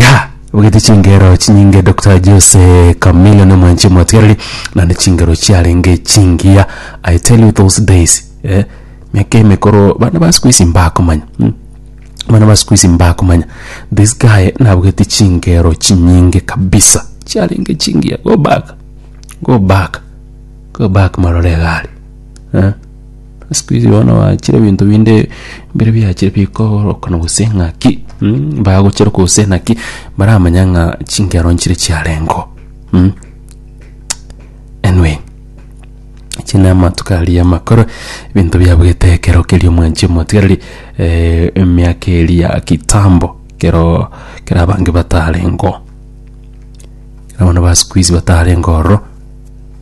ya ogete chingero chinyinge dr jose camilo na mwanchi mwatiareri nande chingero chiarenge chingiya i tell you those days eh, miaka emekoro bana ba siku isi mbakomanya mm. bana ba siku isi mbakomanya this guy nabugete chingero chinyinge kabisa chiarenge chingiya go back go back go back marore egari eh? Siku hizi bono bachire ebinto binde bire biachire bikoorokana gose ng'aki mm, bagochera gose naki baramanya ng'a chingero nchire chiarengo mm. Anyway, echi namatuko aria amakoro ebinto biabwete ekero keria omwanchi omotigareri eh, emiaka eria ya kitambo ekero ekero abange batarengo ekero abana ba siku hizi batarengo ororo.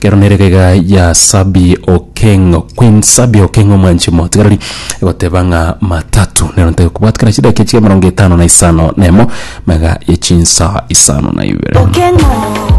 Kero nere egega ya Sabi Okeng, Queen Sabi Okeng omwanchi motigareri egoteba ng'a matatu nero ntae kobwat kera chidaki chire emerongo etano na isano na emo mega ye chinsa isano na ibere. Okeng'o.